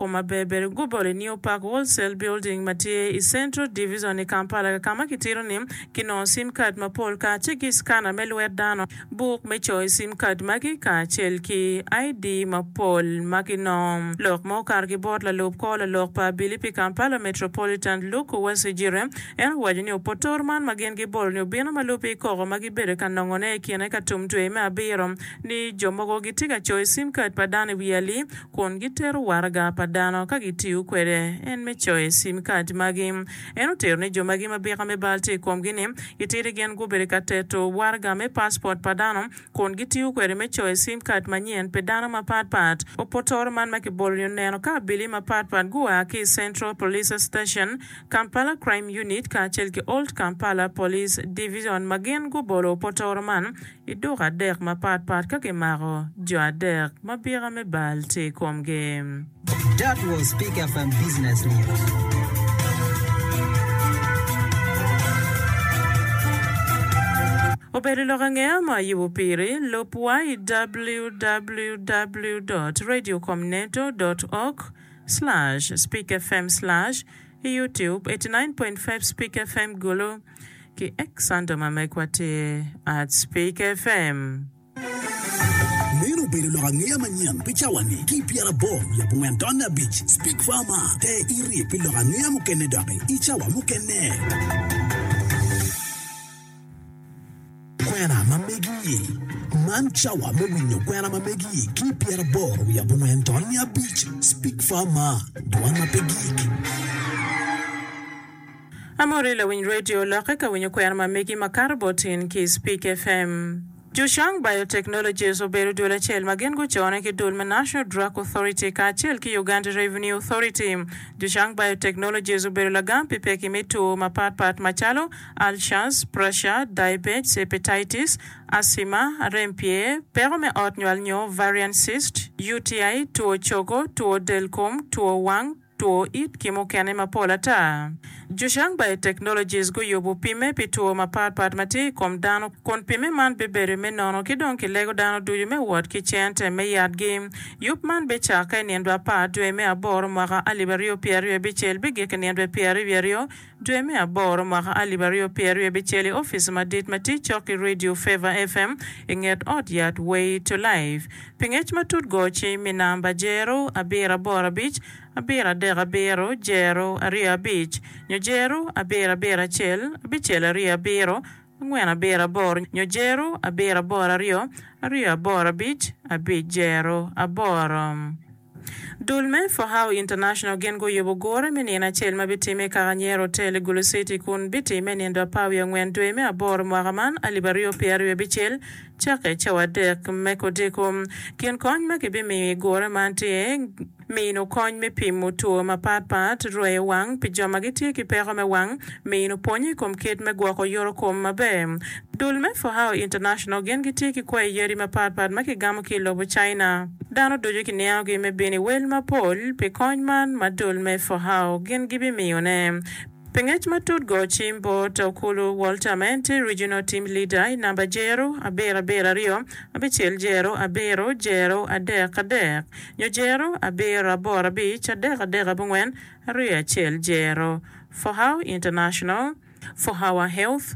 Kwo maberber guboli New Park Wholesale Building ma tye i Central Divizon i Kampala ka ma kitito ni kinongo sim kad mapol kacel ki scanner me lwet dano, buk me coyo sim kad magi kacel ki ID mapol ma kinongo. Lok ma okato ki bot lalub kor lalok pa abili pi Kampala Metropolitan Luke Uwesijire, en owaco ni opotoro man ma gin gibolo ni obino ma lupiny koko ma gibedo ka nongo ne i kine ka tum dwe me abiro ni jo mogo gitye ka coyo sim kad pa dano i wi ali kun gitero waraga pa dano ka gitiyo kwede, en me coyo sim kad magi. En otero ni jo magi ma bika me bal tye i komgi ni, itidi gin gubedo ka teto waraga me paspot pa dano kun gitiyo kwede me coyo sim kad manyen pi dano mapat pat. Opotoro man ma kibolo ni oneno ka abili mapat pat gua ki i Central Police Station, Kampala Crime Unit kacel ki Old Kampala Police Division ma gin gubolo opotoro man I duka adek mapat pat ka kimako jo adek ma bika me bal tye i komgi. That was Pick FM Business News. Obedo lok ange ma ayubo piri, lub wa i www.radiocomneto.org/speakfm/i youtube 89.5 Speak FM Gulu. Ki ek Santo ma megwa tye at Speak FM. Meno obedo lok angeya manyen pi cawani ki i pyerabor wiye abongwen taun abic. Speak FM a, te iryek pi lok angeya mukene doki i cawa mukene. Kwena ma megi. Man cawa me winyo kwena ma megi ki i pyerabor wiye abongwen taun abic. Speak FM a, dwan ma pe gik. Amori lawiny radio lokke ka winyo kwena ma megi ma kato bot in ki i Speak FM. Jushang Biotechnologies obedo dul acel ma gin gucone ki dul me National Drug Authority kacel ki Uganda Revenue Authority. Jushang Biotechnologies obedo lagam pi pekki me two mapat pat macalo, ulcers, pressure, diabetes, hepatitis, asthma, rem pye, peko me ot nywal nyo ovarian cyst, UTI, two cogo, two del kom, two wang, Two it ki mukene mapol ata. Zhushang Biotechnologies guyubo pimme pi two mapat pat ma tye i kom dano kun pimme man bibedo me nono ki dong kilego dano ducu me wot ki cente me yatgi. Yub man bicakke i nindwa apar dwe me aboro mwaka alip aryo pyeraryo bicel bigik i nindwa pyeraryo wiye aryo Dwe me aboro mwaka alip aryo pyeraryo abicel i opice madit ma tye cok ki Radio Favor FM i nget ot yat Way to Life. Pi ngec matut go ci mi namba jero abiro aboro abic abiro adek abiro jero aryo abic nyo jero abiro abiro acel abicel aryo abiro angwen abiro aboro nyo jero abiro aboro aryo aryo aboro abic abic jero aboro. Dul me Fohau International gin guyubo gure me nino acel ma bitimme i Kakanyero Hotel i Gulu City kun bitimme nindo apar wiye angwen dwe me aboro mwaka man alip aryo pye aryo bicel cakke i cawa adek me kodiko. Kin kony ma kibimiyo i gure man tye mino kony me pimo two mapat pat, rweyo wang pi jo ma gitye ki peko me wang, mino pwonye i kom kit me gwoko yorokom maber, Dul me Fohao International gin gitye ki kwayi yadi mapatpat ma kigamo ki i lobo China. Dano ducu kiniangogi me bino i wel mapol pi kony man ma dul me Fohao gin gibimiyone. Pi ngec matut go cim bot Okulu Walter ma en tye Regional Team Leader i namba Jero abiro abiro aryo abicel Jero abiro Jero adek adek nyo Jero abiro aboro abic adek adek abongwen aryo acel Jero Fohao International Fohawa Health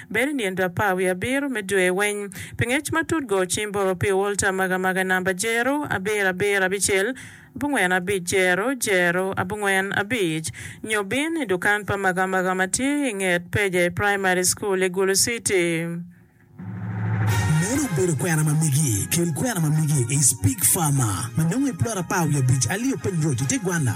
Bedo i nino apar wiye abiro me dwe weng. Pi ngec matut go cim bot opio Walter magamaga namba jero abiro abiro abicel abongwen abic jero jero abongwen abic nyo bin i dukan pa magamaga ma tye i nget Peje Primary School i Gulu City. Meno obedo kwena ma migi. Kel kwena ma migi i Speke Farmer ma nongo i plot apar wiye abic alio piny road i te gwanna.